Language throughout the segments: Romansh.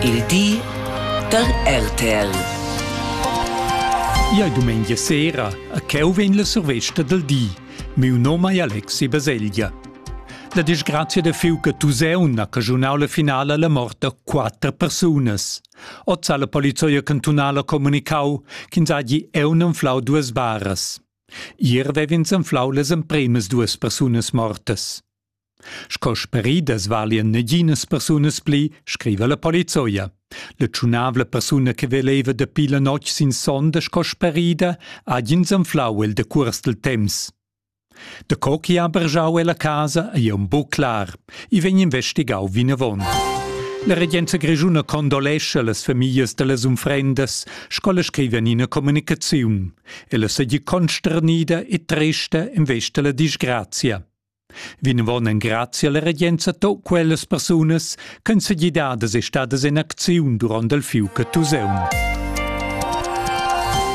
Il di da RTL. Ia è domenica sera a cheu vegn la survesta del di. Meu nome è Alexi Baselgia. La disgrazia de fiu che Tuseun ha cagiunau la finale alla morte da quattro persunas. Oz ha la polizia cantunala comunicau ch'ins hagi eu non flau duas baras. Ier vev'ins anflau las empremas duas persunas mortas. Sco speridas valien neginas persunas pli, scriva la polizoia. La tschunavla persuna che veleva dapi la notg sin sonda sco sperida ha ins anflau el de cuors del temps. Da co chi ha bergiau ella casa ei aunc buc clar. I vegn investigau vinavon. La regenza grischuna condolescha las famiglias dallas unfrendas, sco la scriva in ina comunicaziun. Ella seigi consternida e trista in vesta la disgrazia. Vinvon engrazia la regenza to quellas persunas ch'han sa gidadas e stadas en acziun durant il fiug Tuseun.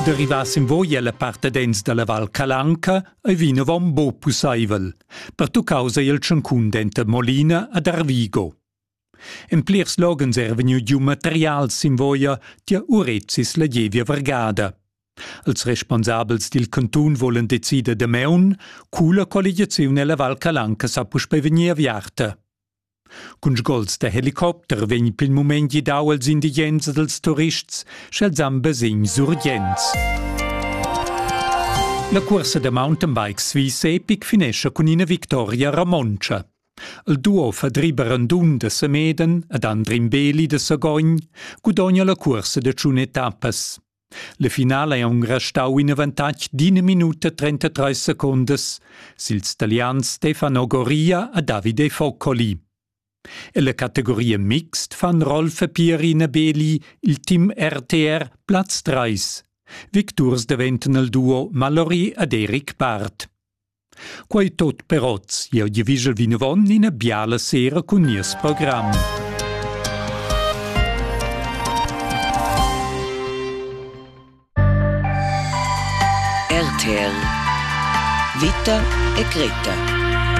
Derivass in voi alla partedens dalla Val Calanca ei vinavon bo pusseivel, per tu causa il tschancun denter Molina ad Arvigo. En plirs loghens era vegniu giu material sin voia tier urezis la gievia vargada. Els responsabels dil cantun volen decider damaun, cu la colligiaziun ella Val Calanca sa puspei vegnir aviarta. Cun sgols da helicopter vegn pil mument gidau els indigens ed els turists, sch'els han basegn surgents. La cursa da mountainbike Swiss Epic finescha cun ina victoria romontscha. Il duo Fadri Barandun da Semeden ed Andrin Beli da Sagogn gudogna la cuorsa da tschun etappas. La finala è Ungarn stau in avantatg d'ina minuta 33 secundas sils talians Stefano Goria e Davide Foccoli. Ella categoria mixt fan Rolf e Pierina Beli il team RTR Platz 3. Victurs daventan il duo Mallory ed Eric Barth. Quei tot per oz. Jeu gievigel vinavon ina biala sera cun nies program. RTL Vita e Greta